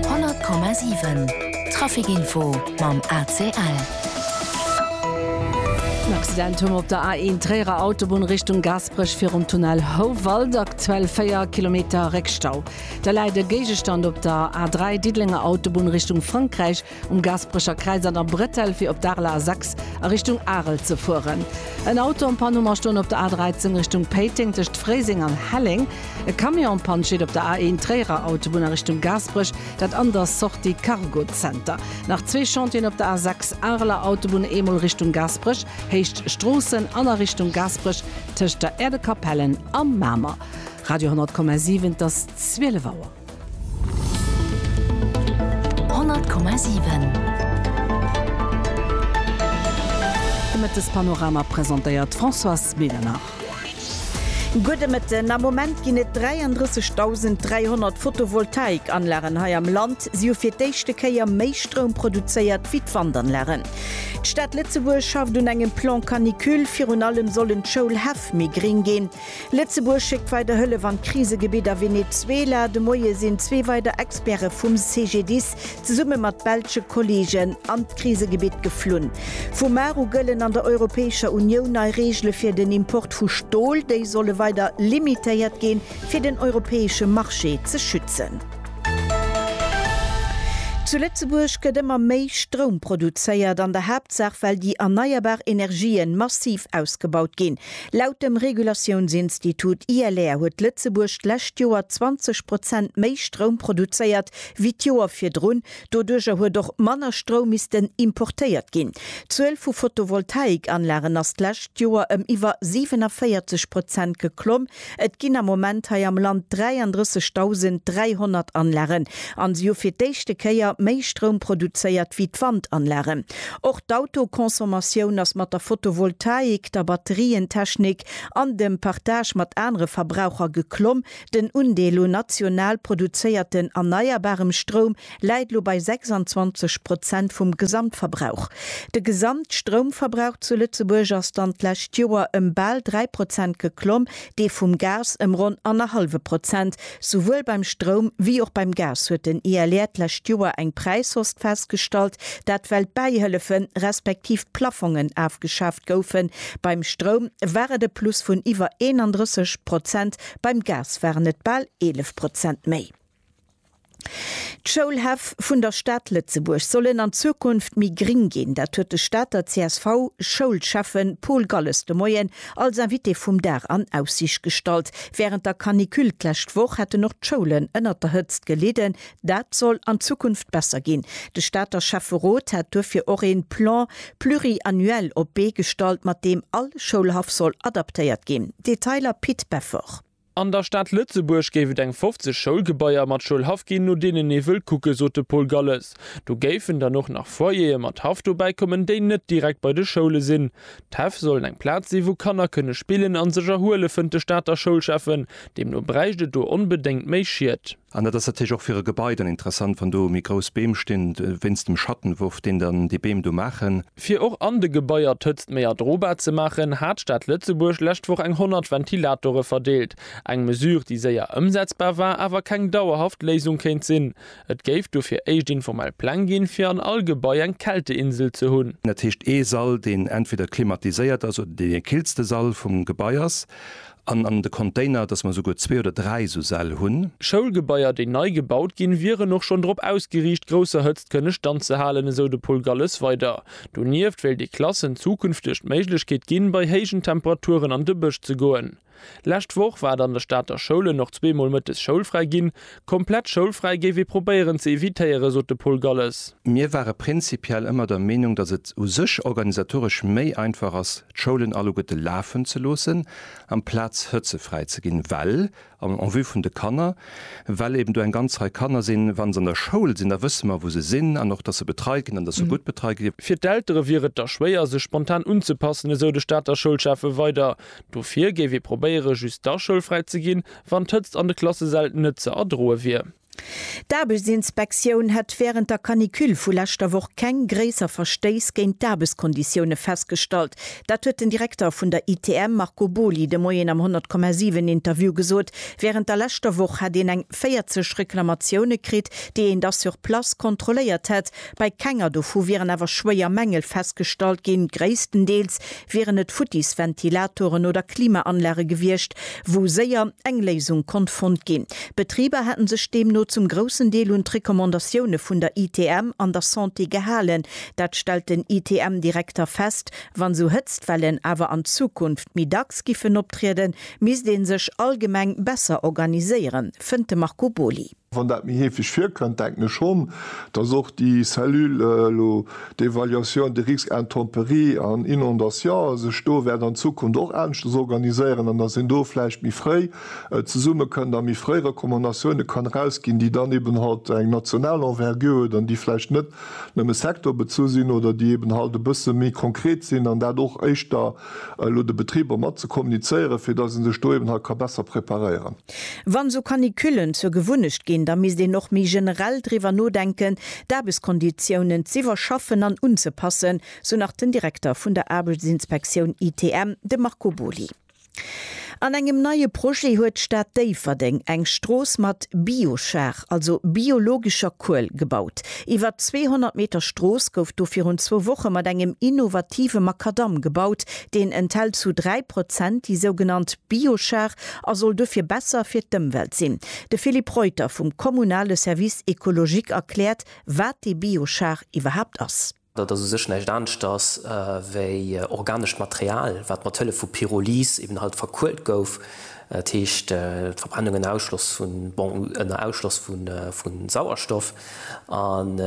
100,7 Trafic Info mam ACL. En Accident hu mer op der A1 Tréierer Autobunn Richtung Gaasperech virum Tunnel Houwald, aktuell 4 Kilometer Réckstau. Da läit e Géigestand op der A3 Diddelenger Autobunn Richtung Frankräich. Um Gaasperecher Kräiz an der Bretelle fir op d'Arler A6 a Richtung Arel ze fueren. En Auto am Panne Mer stoen op der A13 Richtung Péiteng tëscht Fréiseng an Helleng. E Camion am Panne steet op der A1 Tréierer Autobunn a Richtung Gaasperech, dat an der Sortie Cargo Center. Nach zwee Chantieren op der A6 Areler Autobunn, eemol Richtung Gaasperech, Héicht Stroossen an a Richtung Gaasperech tëscht der Äerdekapellen a Mamer. Radio 10,7 Et ass 12 Auer. De Mëttespanorama presentéiert d'Françoise Medernach. Gudde Mëtten, Am Moment ginn et 33.300 Photovoltaik-Anlagen hei am Land. Si hu fir d'éischte Kéier méi Stroum produzéiert wéi d'Wandanlagen. D'Stad Lëtzebuerg schafft un engem Plan Canicule. Virun allem sollen d'Schoulhäff méi gréng ginn. Lëtzebuerg schéckt weider Hëllef an d'Krisegebitt a Venezuela. De Moie sinn zwee weider Experte vum CGDIS zesumme mat belsche Kolleegen an d'Krisegebitt geflunn. Vu mar u gëllen an der Europäescher Unioun nei Reegele fir den Import vu Stol. Déi solle weider limitéiert ginn, fir den europäesche Marché ze schützen. Zu Lëtzebuerg gëtt ëmmer méi Stroum produzéiert, an der Haaptsaach well déi erneierbar Energië massiv ausgebaut ginn. Laut dem Regulatiounsinstitut ILR huet Lëtzebuerg d'lescht Joer 20 Prozent méi Stroum produzéiert wéi d'Joer virdrun. Doduerjer huet och manner Stroum missten importéiert ginn. D'Zuel vu Photovoltaikanlagen ass d'lescht Joer ëm iwwer 47 Prozent geklomm, Et ginn am Moment hei am Land 33.300 Anlagen an se hu fir d'éischte Kéier méi Stroum produzéiert wéi d'Wandanlagen. Och d'Autoconsommation ass mat der Photovoltaik, der Batterientechnik an dem Partage mat anere Verbraucher geklomm. Den Undeel un national produzéierten erneierbarem Stroum läit elo bei 26 Prozent vum Gesamtverbrauch. De Gesamtstroumverbrauch zu Lëtzebuerg ass dann d'lescht Joer ëm bal 3 Prozent geklomm, dee vum Gas ëm ronn annerhallwe Prozent. Souwuel beim Stroum wéi och beim Gas huet den ILR d'lescht Joer eng Präishost festgestallt, dat well d'Bäihëllefen, respektiv d'Plaffongen afgeschaaft goufen. Beim Stroum war et e Plus vun iwwer 31 Prozent, beim Gas waren et bal 11 Prozent méi. D'Schoulhäff vun der Stad Lëtzebuerg sollen an Zukunft méi gring ginn. Dat huet de Stater CSV-Schoulschäffe Paul Galles de Moien als Invité vum Dag an Aussiicht gestallt. Wärend der Canicule d'lescht Woch hätten och d'Schoulen ënnert der Hëtzt gelidden. Dat soll an Zukunft besser ginn. De Stater Schäfferot hat duerfir och ee Plan pluriannuel op d'Bee gestallt, mat deem all Schoulhaff soll adaptéiert ginn. Detailer Pit Beffort. An der Stad Lëtzebuerg géif et eng 50 Schoulgebaier mat Schoulhaff ginn, no deenen ee wëll kucken, sot de Paul Galles. Do géifen dann och nach Foyere mat Haff dobäi kommen, déi net direkt bei de Schoule sinn. D'Häff sollen eng Plaz sinn, wou Kanner kënne spillen a sech erhuelen, fënnt de Stater Schoulschäffen. Deemno bräicht et do onbedéngt méi Schied. An dat ass natierlech och fir e Gebai dann interessant, wann do méi grouss Beem stinn, wéinst dem Schattenwurf, deen dann déi Beem do maachen. Fir och an de Gebaier d'Hëtzt méi erdrobar ze maachen, hat d'Stad Lëtzebuerg d'lescht Woch eng 100 Ventilatore verdeelt. Eng Mesure, déi séier ëmsetzbar war, awer keng dauerhaft Léisung kéint sinn. Et géif dofir éischt informell Pläng ginn, fir an all Gebai eng Kälteinsel ze hunn. Dat heescht ee Sall, deen entweder klimatiséiert ass oder deen dee killste Sall vum Gebai ass. An an de Container, dass mer esouguer zwee oder dräi esou Säll hunn. Schoulgebaier, déi nei gebaut ginn, wieren och schonn drop ausgeriicht, grousser Hëtzt kënne standzehalen, esou de Paul Galles weider. Donieft wéilt ee Klassen zukünfteg d'Méiglechkeet ginn, bei héijen Temperaturen an de Bësch ze goen. Lescht Woch war et an de Stater Schoulen och zweemol mëttes schoulfräi ginn, Komplett schoulfräi géif ee probéieren ze evitéieren, sot de Paul Galles. Mir ware prinzipiell ëmmer der Meenung, datt et u sech organisatoresch méi einfach ass, d'Schoulen alleguerte lafen ze loossen, amplaz hëtzefräi ze ginn, well, en vue vun de Kanner, well eben do eng ganz Rei Kanner sinn, wa se an der Schoul sinn, da wësse mer, wou se sinn an och, datt se betreit ginn an datt se gutt betreit ginn. Fir d'Eltere wier et da schwéier, sech spontan unzepassen, esou de Stater Schoulschäffe weider. Dofir géif ee probéieren, just da schoulfräi ze ginn, Wann d'Hëtzt an de Klassesäll net ze erdroe wier. D'Aarbechtsinspektioun hätt wärend der Canicule vu leschter Woch keng gréisser Verstéiss géint d'Aarbechtskonditioune festgestallt. Dat huet den Direkter vun der ITM Marco Boly de Moien am 100,7 Interview gesot. Wärend der leschter Woch hätt een eng 40 Reklamatioune kritt, déi een da sur place kontrolléiert hätt. Bei kenger dovu wieren awer schwéier Mängel festgestallt ginn. Gréisstendeels wieren et futtis Ventilatoren oder Klimaanlage gewiescht, wou séier eng Léisung konnt fonnt ginn. D'Betriber hätten sech deemno zum groussen Deel un d'Recommandatioune vun der ITM an der Santé gehalen. Dat stellt den ITM-Direkter fest. Wann esou Hëtztwellen awer an Zukunft méi dacks giffen optrieden, misst ee sech allgemeng besser organiséieren, fënnt de Marco Boly. Wann dat méi heefeg virkënnt, denken ech schonn, dass och déi Cellule elo d'évaluation des risques intempéries an inondations sech do wäert an Zukunft och aneschters organiséieren an dass een do vläicht méi fréi zesummekënnt a méi fréi Recommandatioune kann erausginn, déi dann eeben halt eng national Envergure huet an déi vläicht net nëmme sectorbezu sinn oder déi eeben halt e bësse méi konkret sinn an dat och éischter elo de Betriber mat ze kommunizéieren, fir dass ee sech do eeben halt ka besser preparéieren. Wann esou Canicullen zur Gewunnecht ginn, da misst een och méi generell driwwer nodenken, d'Aarbechtskonditiounen z'iwwerschaffen an unzepassen, sou nach den Direkter vun der Aarbechtsinspektioun ITM, de Marco Boly. An engem neie Projet huet d'Stad Déifferdeng eng Strooss mat Biochar, also biologescher Kuel, gebaut. Iwwer 200 Meter Strooss gouf do virun zwou Woche mat engem innovative Makadamm gebaut. Deen enthält zu dräi Prozent déi sougenannt Biochar, a soll dofir besser fir d'Ëmwelt sinn. De Philippe Reuter vum kommunale Service écologique erkläert, wat dee Biochar iwwerhaapt ass. Dat ass u sech näischt aneschters wéi organescht Material, wat mat Hëllef vu Pyrolyse eben halt verkuelt gouf, dat heescht d'Verbrennung ënner Ausschloss vu, bon, ënner Ausschloss vu Sauerstoff. An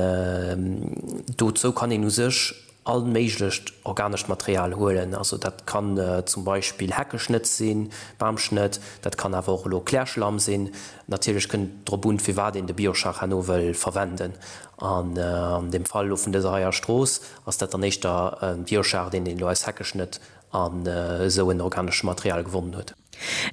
dozou kann een u sech. All méiglecht organescht Material huelen, also dat kann zum Beispill Heckeschnëtz sinn, Bamschnëtt, dat kann awer och elo Klärschlamm sinn. Natierlech kënnt et drop un, firwat een de Biochar no wëll verwenden. An dem Fall elo vun dëser heier Strooss ass dat dann éischter e Biochar, deen een elo aus Heckeschnëtt an esou en organesche Material gewonnen huet.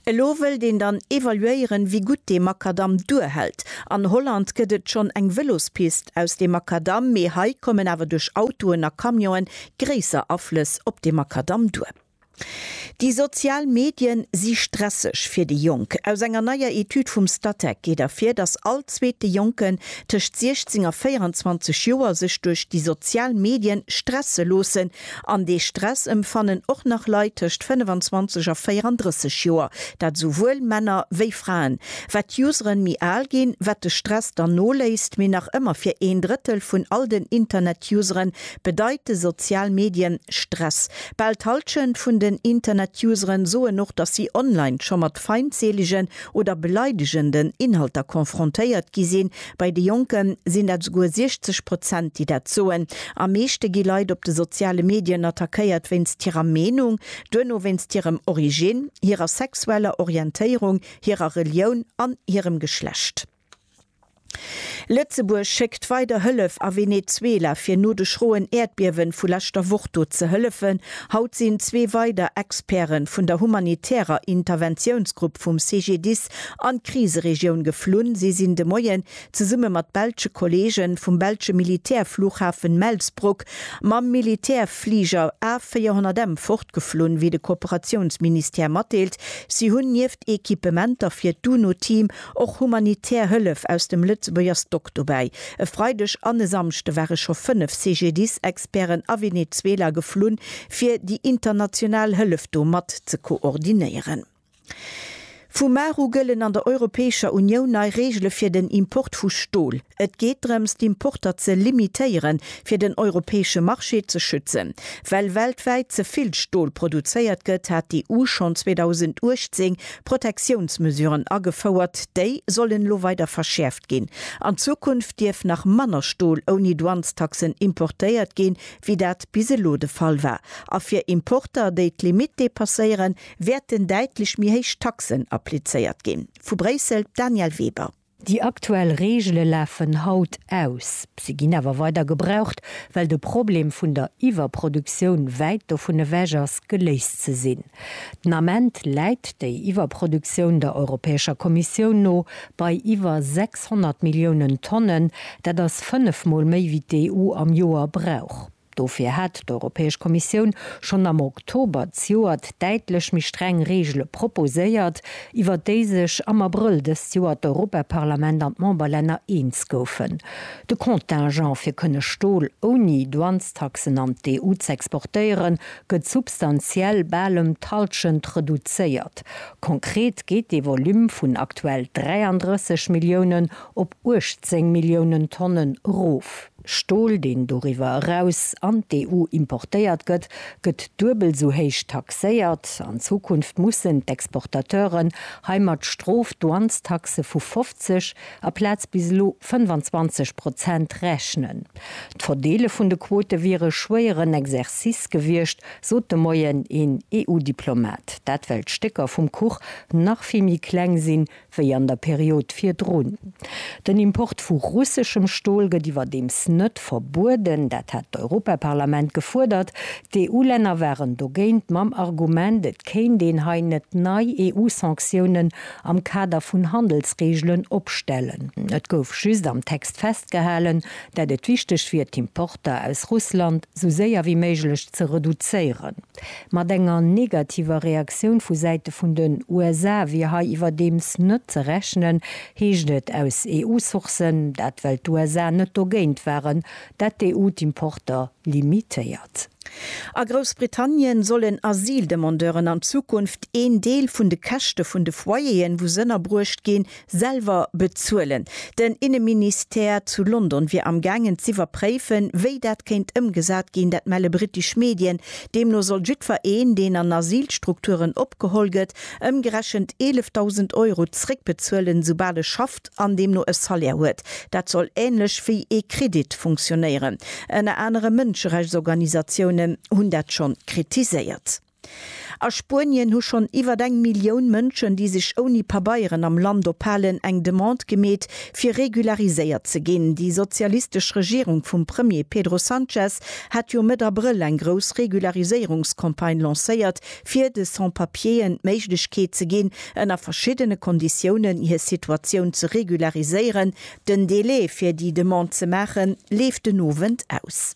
Elo wëllt een dann evaluéieren, wéi gutt dee Makadamm duerhält. An Holland gëtt et schonn eng Vëlospist aus deem Makadamm, mee hei kommen awer duerch Autoen a Camionen gréisser Aflëss op de Makadamm duer. Déi sozial Medie si stresseg fir déi Jonk. Aus enger neier Etüd vum Statec geet ervir, datt all zweete Jonken tëscht 16 a 24 Joer sech duerch déi sozial Medien stresse loossen, An dee Stress emfannen och nach Leit tëscht 25 a 34 Joer, dat esouwuel Männer wéi Fraen. Wat d'Useren méi al ginn, wat de Stress dann noléisst, mee nach ëmmer fir een Drëttel vun all den Internet-Useren bedeite sozial Medien Stress. Bal d'Hallschent vun den Internet-Useren soen och, dass si online scho mat feindseelegen oder beleidegenden Inhalter konfrontéiert gi sinn, Bei de Jonke sinn dat esouguer 60 Prozent, déi dat soen. Am meeschte gi Leit op de soziale Medien attackéiert wéinst hirer Meenung, duerno wéinst hirem Originn, hirer sexueller Orientéierung, hirer Relioun an hirem Geschlecht. Lëtzebuerg schéckt weider Hëllef a Venezuela, fir no de schroen Äerdbiewe vu leschter Woch do ze hëllefen. Haut sinn zwee weider Experte vun der humanitärer Interventiounsgrupp vum CGDIS An d'Kriseregioun geflunn si sinn de Moien zesumme mat belsche Kolleege vum belsche Militärflughafen Melsbroek mam Militärfliger A400M fortgeflunn, wéi de Kooperatiounsministère matdeelt. Si hunn nieft Equipementer fir d'UNO-Team och humanitär Hëllef aus dem Lëtzebuerger Stock dobäi. E Freideg an e Samschde ware scho fënnef CGDIS-Experten a Venezuela geflunn, fir déi international Hëllef do mat ze koordinéieren. Vu mar u gëllen an der Europäescher Unioun nei Reegele fir den Import vu Stol. Et geet drëms, d'Importer ze limitéieren, fir den europäesche Marché ze schützen. Well weltwäit ze vill Stol produzéiert gëtt, hat d'EU schonn 2018 Protectiounsmesuren agefouert. Déi sollen elo weider verschäerft ginn. An Zukunft dierf nach manner Stol ouni Douanestaxen importéiert ginn, wéi dat bis elo de Fall war. A fir Importer, déi d'Limitt depasséieren, Wäerten däitlech méi héich Taxen applizéiert ginn? Vu Bréissel, Danièle Weber. Déi aktuell Reegele lafen haut aus. Se ginn awer weider gebraucht, well de Problem vun der Iwwerproduktioun wäit dovun ewech ass, geléist ze sinn. Den Ament läit déi Iwwerproduktioun der Europäescher Kommissioun no bei iwwer 600 Milliounen Tonnen. Dat ass fënnef Mol méi wéi d'EU am Joer brauch. Dofir hat d'Europäesch Kommissioun schonn am Oktober d'Joert däitlech méi streng Reegele proposéiert, iwwer déi sech am Abrëll dëst Joer d'Europaparlament an d'Memberlänner eens goufen. De Contingent, fir kënne Stol ouni Douanestaxen an d'EU z'exportéieren, gëtt substantiell, bal ëm d'Hallschent, reduzéiert. Konkret geet dee Volume vun aktuell 33 Milliounen op 18 Milliounen Tonnen erof. Stol, deen doriwwer eraus an d'EU importéiert gëtt, gëtt duebel esou héich taxéiert. An Zukunft mussen d'Exportateuren hei mat Strof-Douanestaxe vu 50 aplaz bis elo 25 Prozent rechnen. D'Verdeele vun de Quote wier e schwéieren Exercice gewiescht, sot de Moien een EU-Diplomat. Dat well d'Stécker vum Kuch nach vill méi kleng sinn, wéi an der Period virdrun. Den Import vu russeschem Stol gëtt iwwerdeems net verbueden, dat hat d'Europaparlament gefuerdert. D'EU-Länner waren dogéint, mam Argument, et kéint een hei net nei EU-Sanktiounen am Kader vun Handelsreegelen opstellen. Et gouf just am Text festgehalen, dat et wichteg wier, d'Importer aus Russland sou séier wéi méiglech ze reduzéieren. Mat enger negativer Reaktioun vu Säite vun den USA wier hei iwwerdeems net ze rechnen, heescht et aus EU-Sourcen. Dat well d'USA net dogéint waren, datt d'EU d'Importer limitéiert. A Groussbritannien sollen Asyldemandeuren an Zukunft een Deel vun de Käschte vun de Foyeren, wou s'ënnerbruecht ginn, selwer bezuelen. Den Inneministère zu London wier amgaangen z'iwwerpréifen, wéi dat kéint ëmgesat ginn, dat melle brittesch Medien. Deemno soll jiddfer een, deen an Asylstrukturen opgeholl gëtt, ëmgerechent 11.000 Euro zréckbezuelen, soubal e schafft an deemno e Salaire huet. Dat soll änlech wéi ee Kredit funktionéieren. Ënner anerem Mënscherechtsorganisatiounen hunn dat schonn kritiséiert. A Spuenien hu schonn iwwert eng Millioun Mënschen, déi sech ouni Pabeieren am Land ophalen, eng Demande gemeet, fir regulariséiert ze ginn. Déi sozialistesch Regierung vum Premier Pedro Sanchez hat jo Mëtt Abrëll eng grouss Regulariséierungscampagne lancéiert, fir de Sans-Papieren d'Méiglechkeet ze ginn, ënner verschiddene Konditiounen hir Situatioun ze regulariséieren. Den Delai, fir déi Demande ze maachen, leeft den Owend aus.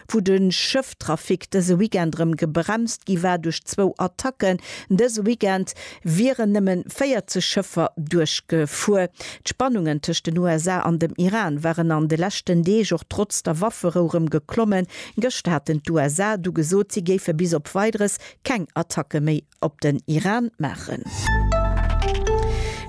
Wou de Schëfftrafic dëse Weekend erëm gebremst gi war duerch zwou Attacken. Dëse Weekend wieren nëmme 40 Schëffer duerchgefuer. D'Spannungen tëscht den USA an dem Iran waren an de leschten Deeg och trotz der Wafferou erëm geklommen. Gëschter haten d'USA du gesot, si géife bis op Weideres keng Attacke méi op den Iran maachen.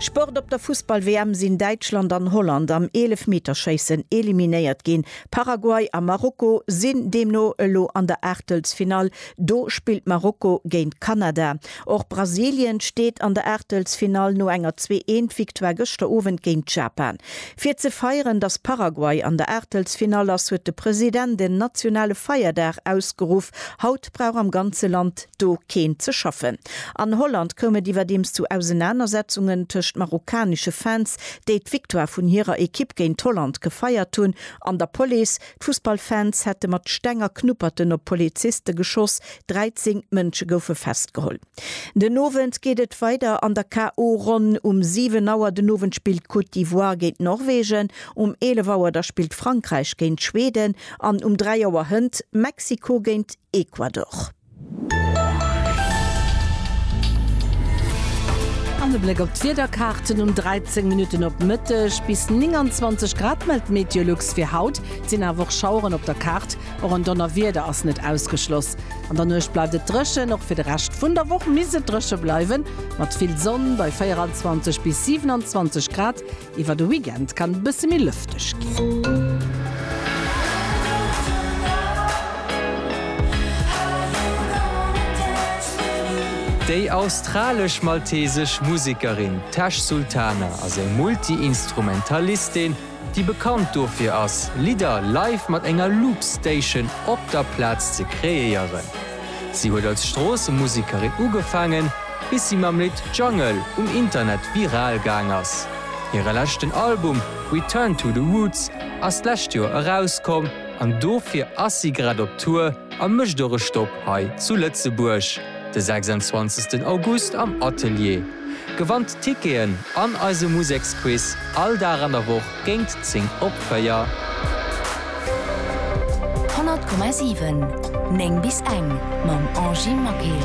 Sport Op der Fussball-WM sinn Däitschland an Holland am Eelefmeterschéissen eliminéiert ginn. Paraguay a Marokko sinn deemno elo an der Aachtelsfinall. Do spillt Marokko géint Kanada. Och Brasilien steet an der Aachtelsfinall no enger zwee eent Victoire gëschter Owend géint Japan. Fir ze feieren, datt Paraguay an der Aachtelsfinall ass, huet de President en nationale Feierdag ausgeruff. Haut. brauch am ganze Land do keen ze schaffen. An Holland koum et iwwerdeems zu Ausenanersetzungen tëscht marokkanesche Fans, déi d'Victoire vun hirer Ekipp géint Holland gefeiert hunn, an der Police. D'Fussballfans hätte mat Steng a Knupperten op Poliziste geschoss, 13 Mënsche goufe festgeholl. Den Owend geet et weider an der KO Ronn. Um 7 Auer den Owend spillt d'Côte d'Ivoire géint Norwegen, um 11 Auer da spillt Frankräich géint Schweden an um 3 Auer hënt Mexiko géint Ecuador. An e Bléck op d'Wiederkaarten, Um 13 Minutten op Mëtteg bis 29 Grad mellt d'Meteolux fir haut, et sinn awer och Schaueren op der Kaart. Och en Donnerwieder ass net ausgeschloss. An der Nuecht bleift et dréchen, och fir de Rescht vun der Woch misst et dréche bleiwen, mat vill Sonn bei 24 bis 27 Grad. Iwwer de Weekend kann et e bësse méi lëfteg ginn. Déi australesch-maltesesch Musekerin Tash Sultana ass eng Multi-Instrumentalistin. déi bekannt dofir ass, Lidder live mat enger Loopstation op der Plaz ze kreéieren. Si huet als Stroossemusekerin ugefaangen, bis si mam Lidd Jungle um Internet viral gaang ass. Hire leschten Album Return to the Roots ass d'lescht Joer erauskomm an dofir ass si grad op Tour, A mécht och e Stopp hei zu Lëtzebuerg de 26 August am Atelier. Gewannt Ticketen an eise Museksquiz all Dag an der Woch géint 10 op 4. 100,7, 9 bis eng mam Angie Maquet.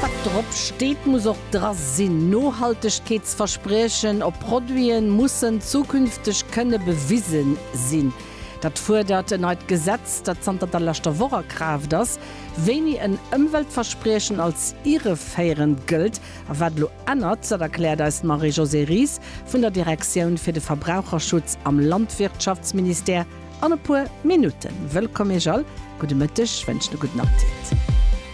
Wat drop steet muss och dra sinn. Nohaltegkeetsverspriechen op Produiten mussen zukünfteg kënne bewisen sinn. Dat fuerdert en neit Gesetz, dat zanter der leschter Woch a Kraaft ass. Wéini en Ëmweltverspriechen als irreféierend gëllt a wat elo ännert, dat erkläert eis d'Marie-Josée Ries vun der Direktioun fir de Verbraucherschutz am Landwirtschaftsministère an e puer Minutten. Wëllkomm Iech all, gudde Mëtteg, wënschen e gudden Apptit.